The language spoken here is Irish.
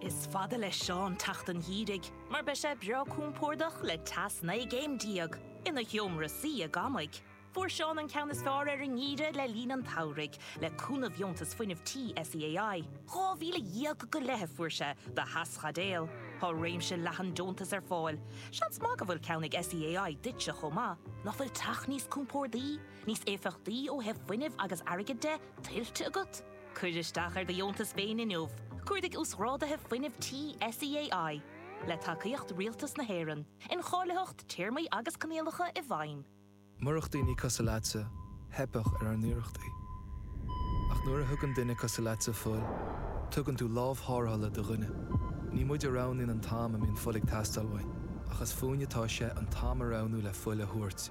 Is fada le Seán teacht an gheimhridh mar beidh sé breá compordach le teas 19 gcéim ina sheomra suí i gCamaigh. Fuair Seán an ceann is fearr ar an ngeimhreadh le linn an tsamhraidh le cúnamh dheontas fuinnimh tí SEAI. Dhá mhíle dhéag go leith a fuair sé do theaschaidéal. Tá réimse leathan deontas ar fáil. Seans maith go bhfuil ceann ag SEAI duitse chomh maith. Nach bhfuil teach níos compordaí? Níos éifeachtaí ó thaobh fuinnimh agus airgid de, tuillte agat? Cuir isteach ar do dheontas féin inniu, Cuardaigh Uasghráduithe Fuinnimh Tí SEAI, le tacaíocht Rialtas na hÉireann. Incháilitheacht, téarmaí agus coinníollacha i bhfeidhm. Murach daoine cosúil leatsa, theipfeadh ar ár n-iarrachtaí. Ach nuair a thugann duine cosúil leatsa fuil, tugann tú lámh tharrthála do dhuine. Ní muid a roghnaíonn an t-am a mbíonn fuil ag teastáil uainn, ach is fúinne atá sé an t-am a roghnú le fuil a thabhairt.